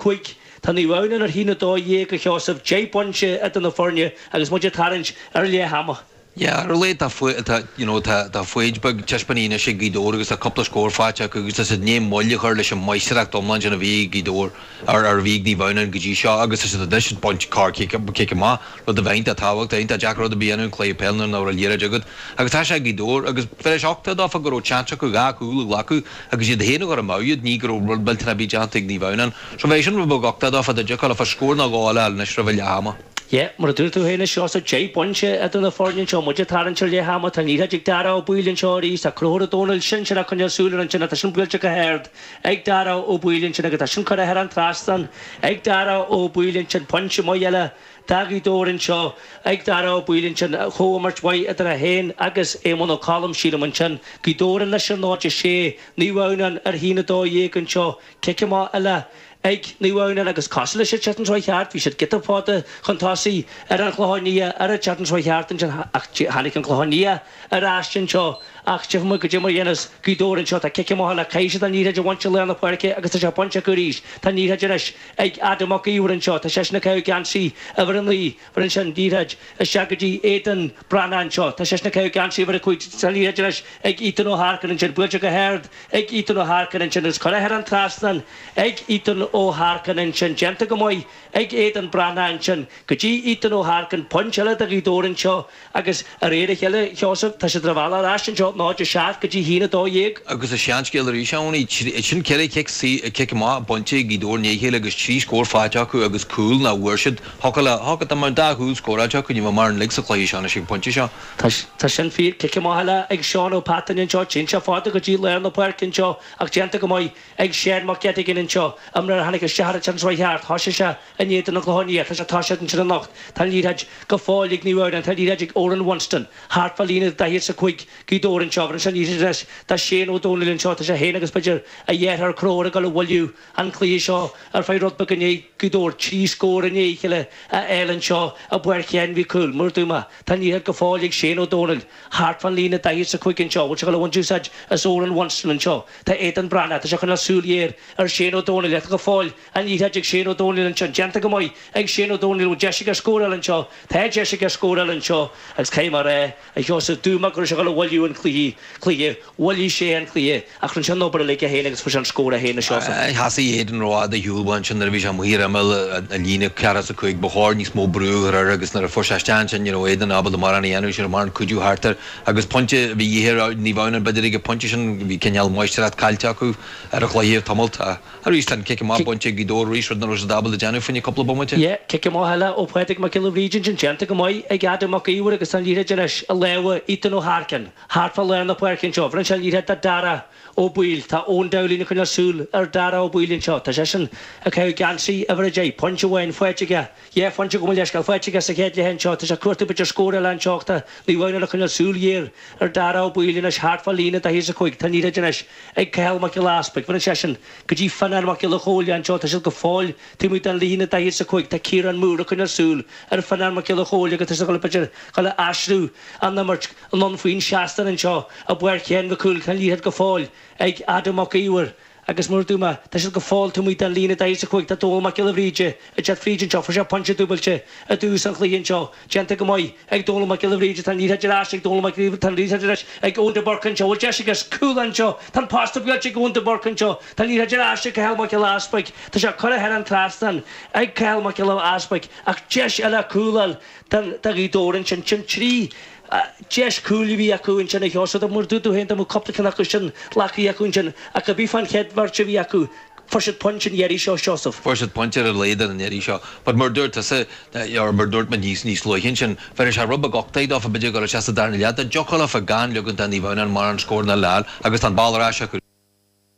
5, Tá Naomh Adhamhnáin ar 1-12 a Sheosaimh, deich bpointe idir na foirne agus muid ag tarraingt ar leath ama. Yeah, tá, tá, you know, tá, tá foighid beag taispeánta anois ag Gaoth Dobhair agus tá cúpla scór faighte acu agus tá siad i ndiaidh moill a chur leis an máistireacht iomlán sin a bhí ag Gaoth Dobhair, ar, ar a bhí ag Naomh Adhamhnáin go dtí seo agus tá siad anois ag baint corr cic, cic amach, rud a bhí iontach tábhachtach, iontach deacair rud ar bith a dhéanamh i gcluiche peile nuair nach bhfuil an liathróid agat agus tá sé ag Gaoth Dobhair agus faoi 8-2 dá raibh seans acu dhá chúl a ghlacadh agus iad féin a chur i mbabhta, ní hé go raibh rud millteanach ar bith déanta ag Naomh Adhamhnáin. Sea, bhí sin rud beag uchtaigh daofa, d'fhéadfaidís, scór nó dhó eile a fháil anois roimh leath ama. Sea, mar a dúirt tú féin, a Sheosaimh, deich bpointe idir na foirne anseo, muid ag tarraingt ar leath ama, tá an liathróid ag Darragh Ó Baoill anseo arís, tá Conchúr Ó Dónaill Sinsear ag coinneáil súil air ansin, tá sin buailte go hard ag Darragh Ó Baoill ansin agus tá sin curtha thar an trasnán ag Darragh Ó Baoill ansin, pointe maith eile Do Ghaoth Dobhair anseo ag Dara Ó Baoill ansin comhimirt mhaith idir é féin agus Éamonn Ó Colla sílim ansin. Gaoth Dobhair anois ar 0-6 Naomh Adhamhnáin ar 1-12 anseo. Cic amach eile ag Naomh Adhamhnáin agus cosúil leis an tsraith cheart. Bhí siad giota fada chun tosaigh ar An Chlochán Liath sa tsraith cheart ansin ach tháinig An Clochán Liath ar ais anseo ach go dtí mar dhéanas Gaoth Dobhair anseo. Tá cic amach eile caithfidh siad an liathróid a bhaint i lár na páirce agus tá sé bainte acu arís. Tá an liathróid anois. ag Adam Mac Iomhair anseo. Tá seisean ag caitheamh geansaí uimhir a naoi bhronn seisean an liathróid isteach go dtí Aidan Breathnach anseo. Tá seisean ag caitheamh geansaí uimhir a cúig tá an liathróid anois ag Ethan Ó hEarcáin ansin. Buailte go hard ag Ethan Ó hEarcáin ansin agus curtha thar an trasnán ag Ethan Ó hEarcáin ansin. Déanta go maith ag Aidan Breathnach ansin go dtí Ethan Ó hEarcáin. Pointe eile do Ghaoth Dobhair anseo. Agus de réir a chéile a Sheosaimh, tá siad ar a mbealach ar ais anseo 0 7 go dtí 1 12. Agus an seanscéal arís ann, anois sin ceithre chic, cic amach bainte ag Gaoth Dobhair i ndiaidh a chéile agus trí scór faighte acu agus cúl nach bhfuair siad. Thiocfadh le, thiocfadh, dá mbeadh dhá chúl scóráilte acu, ní bheadh mórán uilig sa chluiche seo anois ag an phointe seo. Tá, tá sin fíor, cic amach eile ag Seán Ó Pataine anseo, téann sé fada go dtí lár na páirce anseo ach déanta go maith ag Shane Mac Eiteagáin anseo, imreoir a tháinig isteach ar an tsraith cheart, thoisigh sé, In éadan an Chlocháin Léith ach atá siad ansin anocht, tá an liathróid go fóill ag Naomh Adhamhnáin, tá an liathróid ag Oran Winston, thart fán líne daichead is a cúig Gaoth Dobhair anseo, bhronn sé an liathróid anois do Shane Ó Dónaill anseo, tá sé féin agus b'fhéidir a dheartháir Conchúr ag gabháil a mhoilliú an cluiche seo ar feadh rud beag i ndiaidh Gaoth Dobhair, trí scór i ndiaidh a chéile a fháil anseo i bPáirc Sheáin Mhic Cumhaill, mar a dúirt mé. Tá an liathróid go fóill ag Shane Ó Dónaill, thart fán líne daichead is a cúig anseo, bhfuil sé ag gabháil a bhaint úsáid as Oran Winston anseo, tá Aidan Breathnach, tá sé ag coinneáil súil ghéar ar Shane Ó Dónaill, ach tá go fóill An liathróid ag Shane Ó Domhnaill anseo, déanta go maith ag Shane Ó Domhnaill, bhfuil deis aige a scóráil anseo? Tá deis aige a scóráil anseo agus caithfidh mé a rá, a Sheosaimh, dúirt mé go raibh sé chun a mhoilliú an cluiche, cluiche, mhoilligh sé an cluiche ach rinne sé an obair uilig é féin agus fuair sé an scór é féin, a Sheosaimh. Sheas Aidan ró-fhada, ar shiúl uaidh ansin nuair a bhí sé amuigh ar imeall an líne, ceathracha is a cúig, ba chóir níos mó brú a chur air agus nuair a fuair sé isteach ansin ní raibh Aidan ábalta mórán a dhéanamh, ní raibh mórán cuidiú thart air agus pointe a bhí de dhíth ar Naomh Adhamhnáin b'fhéidir ag an bpointe sin, bhí cineál máistreacht caillte acu ar an chluiche, le tamallt, a. Arís tá an cic amach bainte ag Gaoth Dobhair arís, rud nach raibh siad ábalta déanamh fá choinne cúpla bomaite. Yé, cic amach eile ó Phádraig Mac Giolla Bhríde ansin, déanta go maith ag Adam Mac Íomhair agus tá an liathróid anois i lámha Ethan Ó hAircinn. Thart fá lár na páirce anseo, bheireann sé an liathróid do Dara Ó Baoill. Tá Eoin Dowling ag coinneáil súl ar Dara Ó Baoill anseo. Tá seisean ag caitheamh geansaí uimhir a deich. Pointe amháin faighte aige. Dhá phointe, gabh mo leithscéal, faighte aige sa chéad leath anseo. Tá sé ag cuartú b'fhéidir scór eile anseo ach tá Naomh Adhamhnáin ag coinneáil súil ghéar ar Dara Ó Baoill anois thart fá líne daichead a cúig. Tá an liathróid anois ag Cathal Mac Giolla Easpaig. Bheireann seisean go dtí Fionnán Mac Giolla Chomhaill anseo. Tá siad go fóill taobh amuigh den líne daichead a cúig. Tá Kieran Moore ag coinneáil súil ar Fionnán Mac Giolla Chomhaill agus tá siad ag dul a aistriú an imirt anonn faoin seastán anseo i bPáirc Sheáin Mhic Cumhaill. Tá an liathróid go fóill ag Adam Mac Íomhair. agus mar a dúirt mé, tá siad go fóill taobh amuigh den líne daichead a cúig, tá Dónall Mac Giolla Bhríde, ag teacht fríd anseo, fuair sé pointe dúbailte i dtús an chluiche anseo, déanta go maith ag Dónall Mac Giolla Bhríde, tá an liathróid ar ais ag Dónall Mac, tá an liathróid ar ais ag Eoin de Búrca anseo, bhfuil deis aige cúl anseo, tá an posta buailte ag Eoin de Búrca anseo, tá an liathróid ar ais ag Cathal Mac Giolla Easpaig, tá sé curtha thar an trasnán ag Cathal Mac Giolla Easpaig, ach deis eile cúl a fháil do Ghaoth Dobhair ansin, sin trí. Deis cúil a bhí acu ansin a Sheosamh. Mar a dúirt tú féin dá mbeadh cupla ceann acu sin glactha acu ansin. Ach a bhí fán chéad bheirt a bhí acu, fuair siad pointe an iarraidh seo, a Sheosamh. Fuair siad pointe ar a laghad an iarraidh seo. But mar a dúirt tusa, or mar a dúirt muid níos, níos luaithe ansin, bheadh sé róthábhachtach dófa, b'fhéidir ag dul isteach sa darna leath, dá dtiocfadh leofa gan ligean do Naomh Adhamhnáin mórán scóranna eile a fháil agus tá an ball ar ais acu.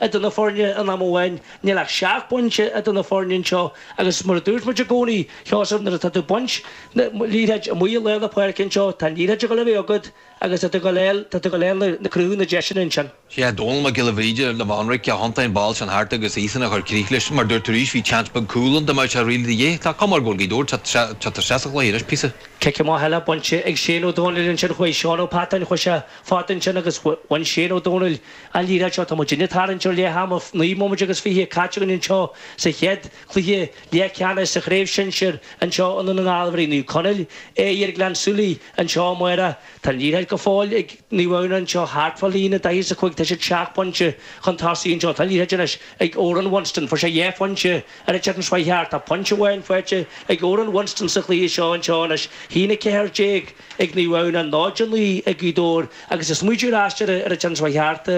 idir na foirne in am amháin. Níl ach seacht bpointe idir na foirne anseo agus mar a dúirt muid i gcónaí, a Sheosamh, nuair atá tú ag baint na liathróid amuigh i lár na páirce anseo, tá an liathróid ag dul a bheith agat agus tá tú ag dul a, tá tú ag dul a chruthú na deiseanna ansin. Sé é Dónall Mac Giolla Bhríde, Eoin de Búrca a thiontaigh an ball sin thart agus iadsan a chuir críoch leis. Mar a dúirt tú arís, bhí tseans beag cúl ann, dá mbeadh sé really de dhíth, tá cuma air go bhfuil Gaoth Dobhair, tá, tá, tá sé sa chluiche anois píosa. Cic amach eile bainte ag Shane Ó Domhnaill ansin, chuaigh Seán Ó Peatáin, chuaigh sé fada ansin agus bhain Shane Ó Domhnaill, An liathróid anseo tá muid anois ag tarraingt ar leath ama naoi mbomaite agus fiche caite againn anseo sa chéad chluiche leathcheannais sa chraobh shinsir anseo i nDún na nGall beidh Naomh Conaill ag imirt Gleann tSúilí anseo amárach. Tá an liathróid go fóill ag Naomh Adhamhnáin anseo thart fá líne 45 tá siad seacht bpointe chun tosaigh anseo. Tá an liathróid anois ag Odhrán Winston fuair sé dhá phointe ar an tseachtain seo a chuaigh thart. Tá pointe amháin faighte ag Odhrán Winston sa chluiche seo anseo anois, 1 14. ag Naomh Adhamhnáin 0 9 ag Gaoth Dobhair agus ag smaoitiú ar ais ar an tseachtain seo a chuaigh thart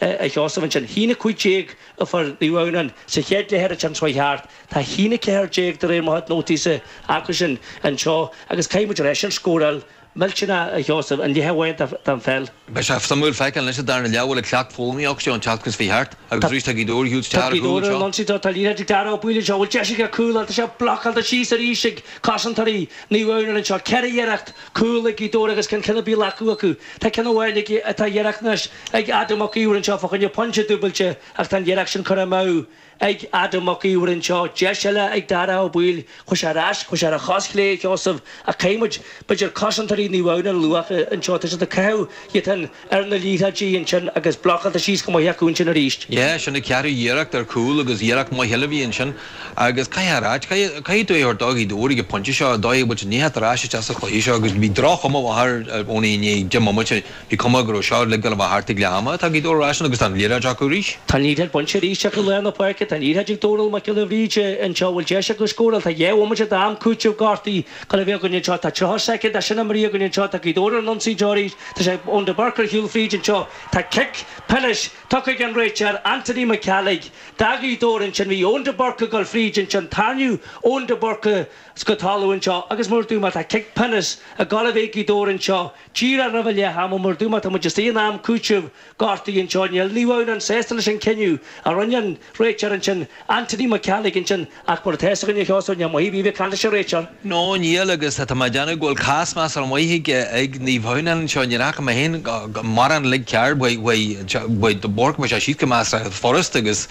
a Sheosamh ansin. 1 15 a fuair Naomh Adhamhnáin sa chéad leath ar an tseachtain seo a chuaigh thart, tá 1 14 de réir mo chuid nótaí-sa acusan anseo agus caithfidh muid a rá sin scóráil mhillteanach a Sheosamh, an leath amháin den pheil. Beidh sé suimiúil feiceáil anois sa darna leath bhfuil an ceacht foghlamtha acu ón tseachtain seo a chuaigh thart agus arís tá Gaoth Dobhair isteach ar chúl anseo. Lon siad tá an liathróid ag Dara Ó Baoill anseo bhfuil deis aige cúl ann tá sé blocáilte síos arís ag cosantóirí Naomh Adhamhnáin anseo ceithre iarracht cúl ag Gaoth Dobhair agus gan ceann ar bith glactha acu tá ceann amháin ag tá iarracht anois ag Adam Mac Íomhair anseo fá choinne pointe dúbailte ach tá an iarracht sin curtha amú ag ag Adam Mac Iomhair anseo, deis eile ag Daire Ó Baoill, chuir sé ar ais, chuir sé ar a chos chlé, Sheosamh, ach caithfidh muid, b'fhéidir, cosantóirí Naomh Adhamhnáin a lua anseo, tá siad ag caitheamh iad fhéin ar na liathróidí ansin agus blocáilte síos go maith acu ansin arís. Yeah, sin an ceathrú iarracht ar chúl agus iarracht maith eile a bhí ansin agus caithfidh a ráit, caithfidh, caithfidh tú é a thabhairt do Ghaoth Dobhair ag an pointe seo, a Dáithí, go bhfuil siad i ndiaidh a theacht ar ais isteach sa chluiche seo agus bhí droch-chuma mhaith ar, ar, ón i ndiaidh deich mbomaite. Bhí cuma go raibh seo uilig ag dul a bheith thart ag leath ama. Tá Gaoth Dobhair ar ais agus tá an liathráid acu arís. Tá an liathráid bainte arís acu i lár na páirce. Tá an liathráid ag Dónall Mac Giolla Bhríde anseo an bhfuil deis acu scóráil. Tá dhá bhomaite d'am cúitimh gortaithe le bheith againn anseo. Tá tríocha soicind de sin imrithe againn anseo. Tá Gaoth Dobhair ar an ionsaí arís. Tá sé ag Eoin de Búrca ar shiúl fríd anseo. Tá cic pionóis tugtha ag an réiteoir, Anthony Mac Ceallaigh. Do Ghaoth Dobhair ansin. Bhí Eoin de Búrca ag dul fríd ansin. Tarraingíodh Eoin de Búrca go talamh anseo agus mar a dúirt mé tá cic pionóis ag gabháil a bheith ag Gaoth Dobhair anseo. Díreach roimh leath ama mar a dúirt mé, tá muid istigh in am cúitimh gortaithe anseo, níl Naomh Adhamhnáin sásta leis an cinneadh a rinne an réiteoir ansin, Anthony Mac Ceallaigh ansin ach mar atá fhios againn a Sheosaimh, níl maith a bheith a bheith ag caint leis an réiteoir. No, níl agus tá mé ag déanamh go bhfuil cás measartha maith ag ag Naomh Adhamhnáin anseo, níor fhaca mé féin mórán uilig cearr faoi faoi faoi de Búrca más ea siad go measartha fhad furast agus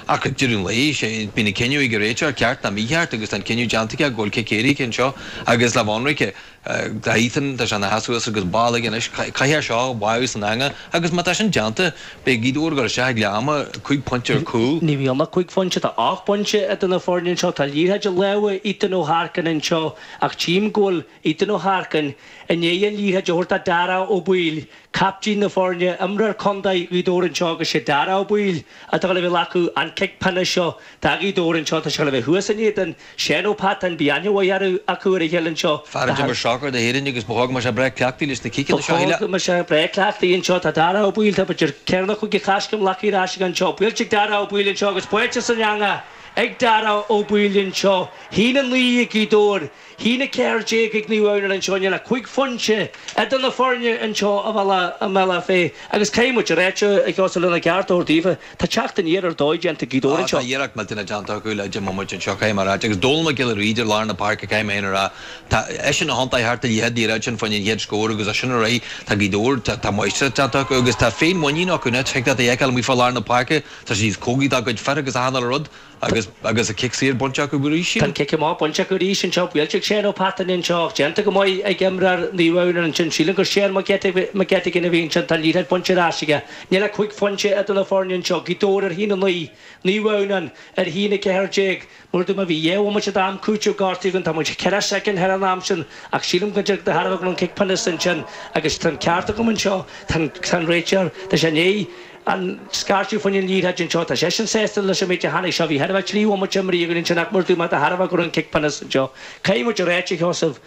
ach ag deireadh an lae sé bíonn an cinneadh ag an réiteoir ceart ná mícheart agus tá an cinneadh déanta aige go bhfuil cic éirice anseo agus lámh ionraice Tá Ethan, tá sé ina sheasamh suas agus ball aige anois, caithfidh sé seo a bheith san eangach agus má tá sin déanta, beidh Gaoth Dobhair ag dul isteach ag leath ama cúig phointe ar gcúl. Ní bheidh ann ach cúig phointe, tá ocht bpointe idir na foirne anseo, tá an liathróid i lámha Ethan Ó hArcain anseo ach tchím go bhfuil Ethan Ó hArcain i ndiaidh an liathróid a thabhairt do Daire Ó Baoill, captaen na foirne, imreoir contae Ghaoth Dobhair anseo agus sé Daire Ó Baoill atá ag dul a bheith ag glacadh an cic pionóis seo do Ghaoth Dobhair anseo, tá sé ag dul a bheith thuas in éadan Seán Ó Peatáin, beidh aithne mhaith ar dóigh acu ar a chéile anseo. Fear a d'imir sacar d'Éirinn agus ba chóir go mbeadh sé breá cleachtaithe leis na ciceanna seo a thuilleadh. Ba chóir go mbeadh sé breá cleachtaithe anseo. Tá Daire Ó Baoill, tá b'fhéidir ceathair nó cúig de choiscéim glactha ar ais aige anseo. Buailte ag Daire Ó Baoill anseo agus báite san eangach ag Daire Ó Baoill anseo. A haon a naoi ag Gaoth Dobhair, a haon a ceathair déag ag Naomh Adhamhnáin anseo. Níl ach cúig phointe idir na foirne anseo i mBealach Féich agus caithfidh muid a ráit a Sheosamh lena gceart a thabhairt daofa. Tá teacht aniar ar dóigh déanta ag Gaoth Dobhair anseo. Tá iarracht mhillteanach déanta acu le deich mbomaite anseo caithfidh mé a ráit, agus Dónal Mac Giolla Bhríde i lár na páirce caithfidh mé fhéin a ráit. Tá eisean a thiontaigh thart an chéad liathróid ansin fá choinne an chéad scór agus as sin ar aghaidh tá Gaoth Dobhair, tá máistreacht déanta acu agus tá féinmhuinín acu anois, thig leat a fheiceáil amuigh fá lár na páirce tá siad níos cóngaraí dá gcuid fir agus achan uile rud. Agus agus an cic saor bainte acu arís. Tá an cic amach bainte acu arís anseo, buailte ag Seán Ó Peatáin anseo, ach déanta go maith ag imreoir Naomh Adhamhnáin ansin. Sílim gur Seán McGettigan a bhí ansin, tá an liathróid bainte ar ais aige. Níl ach cúig phointe idir na foirne anseo, Gaoth Dobhair ar a haon a naoi, Naomh Adhamhnáin ar a haon a ceathair déag. Mar a dúirt mé bhí dhá bhomaite d'am cúitimh gortaithe againn, tá muid ceithre shoicind thar an am sin, ach sílim go dtiocfaidh de thairbhe go raibh an cic pionóis ansin agus tá an ceart agam anseo, tá an réiteoir, tá sé i ndiaidh. an scairt a fuair an liathróid ansin. Tá seisean sásta leis an méid a tháinig sé. Bhí thart ar thrí bhomaite breise againn ansin ach mar a dúirt mé, tharla go raibh an cic pionóis anseo. Caithfidh muid a ráit a Sheosaimh,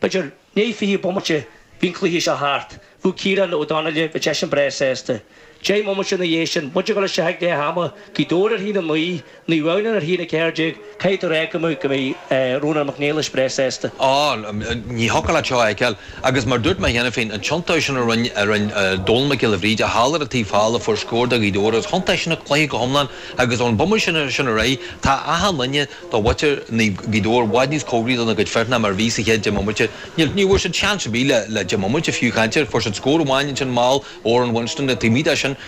b'fhéidir, i ndiaidh fiche bomaite bhí an cluiche seo thart. Bhí Ciarán Ó Donnghaile, bhí seisean breá sásta. Deich mbomaite ina dhiaidh sin, muid ag gabháil isteach ag leath ama, bhí Gaoth Dobhair ar ais ann, Ní raibh ann ach a ceathair déag, caithfidh tú a rá, Colm go mbeidh Rónán Mac Niallais breá sásta. Ó, ní thiocfadh leat seo a fheiceáil. Agus mar dúirt mé cheana féin, an tiontó sin a rinn Dónall Mac Giolla Bhríde thall ar an taobh thall a fuair scór do Ghaoth Dobhair, is thiontaigh sin an cluiche go hiomlán agus ón bpomaite sin ar aghaidh tá achan duine de mhuintir Ghaoth Dobhair i bhfad níos cóngaraí dona gcuid fir ná mar a bhí sa chéad deich mbomaite. Ní bhfuair siad seans ar bith le deich mbomaite fiú, cinnte, fuair siad scór amháin ansin mall, Odhrán Winston, taobh amuigh de sin.